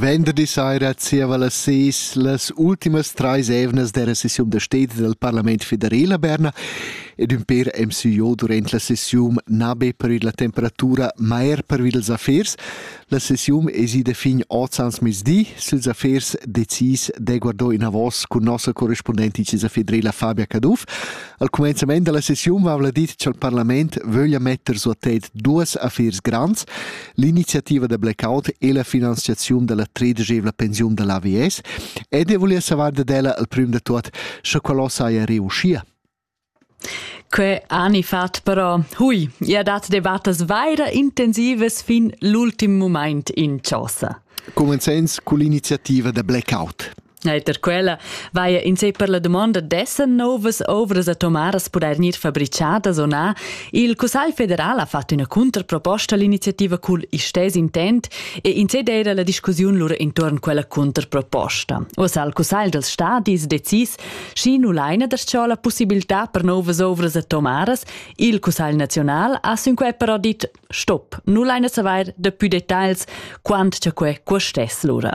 Venderdi saira zieva las seis las ultimas trais evnas della sessiun da stedi del Parlament federal a Berna ed ün per MCO durant la sessiun na be per la temperatura ma er per ils affers. La sessiun es ida fin ozans mezdi. Sils affers decis de guardò in avos cun nossa correspondenti Cisa federala Fabia Caduff. Al comenzament della sessiun vavla dit cha'l parlament vöglia metter su a tet duas affers grands. L'iniziativa da blackout e la finanziaziun dalla tredegevla pensiun dall'AVS ed e volia savar dad ella al prim da tot, sche quello saja reuschia. Que ani fat però, hui, ia dat debattas vaira intensivas fin l'ultim moment in chosa. Comenzens cu l'iniziativa da blackout. Eiter quella vaia in sei per la domanda dessen novas ovras atomaras pudair gnir fabricadas o na. Il Cussagl federal ha fatto üna contraproposta all'iniziativa cul istess intent e in sei d'eira la discussiun lura intorn quella contraproposta. Oss al Cussagl dels Stadis decis, schi nu laina der ciò la possibilità per novas ovras atomaras. Il Cussagl nazional ha sünquai però dit Stop, nu laina savair daplü detagls quant cha que custess lura.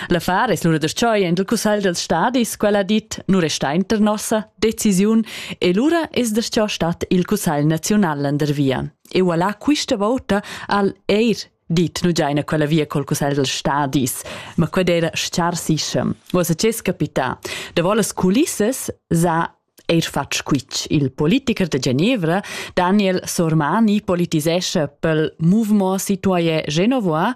L'affar es lura deschoy in il cussagl dels stadis, quel ha dit, nu resta inter nossa decisiun e lura es desciò stat il cussagl naziunal landervia. E voilà quista vouta al eir dit nu giaina quella via col cussagl dels stadis, ma qued era schar sischem. Vos a ces capità. Da vollas culissas sa eir fat squitsch. Il politicher de Genevra, Daniel Sormani, politisescha pel Mouvement Citoyen Genevois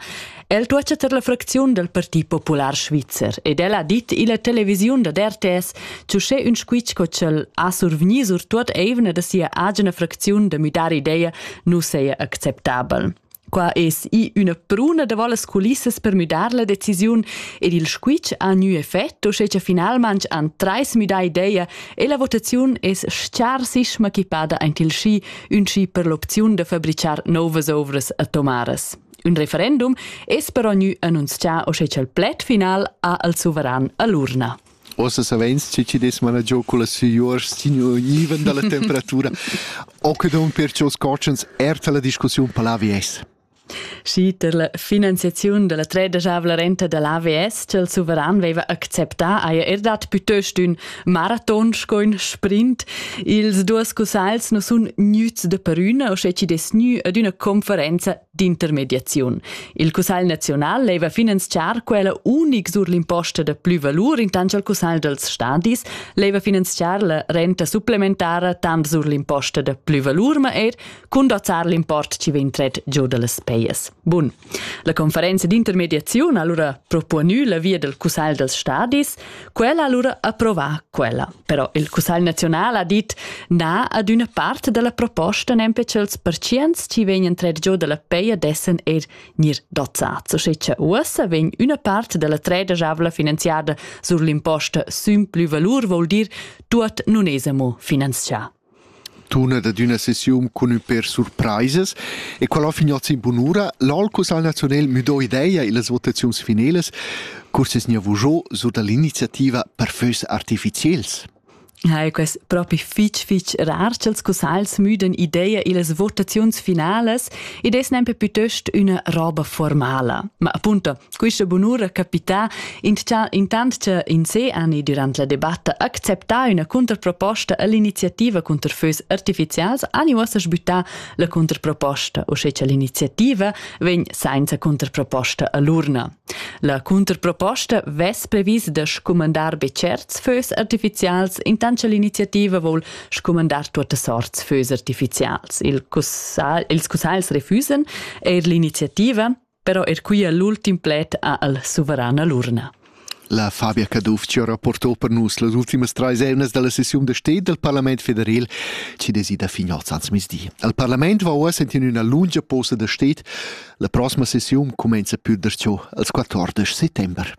El tuocha ter la fracziun del Parti Popular Svizzer ed el ha dit illa televisiun da RTS che sche ün squitsch co ch'el ha survgni sur tuot eivna da sia agina fracziun da müdar idea nu seja acceptabel. Qua es i üna bruna davò las culissas per müdar la decisiun ed il squitsch ha gnü effet, uschè cha finalmanch han trais müdà ideia e la votaziun es s-charsisma equipada aint il schi, ün schi per l'opziun da fabrichar nouvas ouvras atomaras. Un referendum es però gnü annunzià uschè cha'l pled final ha al suveran a l'urna. Ossa saveins che chi dess managiau cullas signurs signiven dalla temperatura. Occidon perciò scotschens erta la discussiun per l'AVS. Schi per la finanziaziun della tredesavla renta dell'AVS, che il suveran veva acceptà, haja er dat piuttost ün maraton sco ün sprint. Ils duos cussagls nu sun gnüts de perüna, o sche chi dess gnü ad üna conferenza d'intermediaziun. Il Cussegl naziunal leva finanziar quella unic sur l'imposta da plü valur intant al Cussegl dals stadis, leva finanziar la renta supplementara tant sur l'imposta da plü valur ma eir cun dozzar l'import chi vegn tret giù da las pejas. Bun. La conferenza d'intermediaziun ha allura propuonü la via del Cussegl dals stadis Quella allura approvà quella, però il Cussagl nazional ha dit na ad üna part della proposta nempe ch'els perciens ci vegnan trer giò dalla peia dessen er gnir dozzats, o sche cha uossa vegn üna part della treda javla finanziada sur l'imposta sün plü valur vol dir tuot nun es amo finanzià. Tunat ad üna sessiun cun ün pêr surpraisas e quel ho finiot sin bunura. L'Alcus al Naziunel müdò ideia illas votaziuns finelas. Curs es gnanc vujo sur da l'iniziativa per fös artificiels. Hai quest propi fitg fitg rar ch'els cussagls müden ideia illas votaziuns finalas ed es nempe pütöst üna roba formala. Ma appunto, Quista bunura capità intcha intant cha in se ani durant la debatta acceptà üna contraproposta all'iniziativa cunter fös artificials ani uossa sbüttà la contraproposta, uschè cha l'iniziativa vegn sainza contraproposta a l'urna. La contraproposta vess previs da scumandar be tscherts fös artificials intant cha l'iniziativa voul scumandar tuottas sorts fös artificials. Il cussagl, ils cussagls refüsan eir l'iniziativa però er quia l'ultim pled ha al suverana l'urna. La Fabia Caduff ci ha rapporto per nus las ultimas trais eunas dalla sessiun da sted del Parlament federal ci desida fin oz ans misdi. Al Parlament va oa sentin üna lunga posa da sted. La prossima sessiun comenza pür der ciò als 14 settember.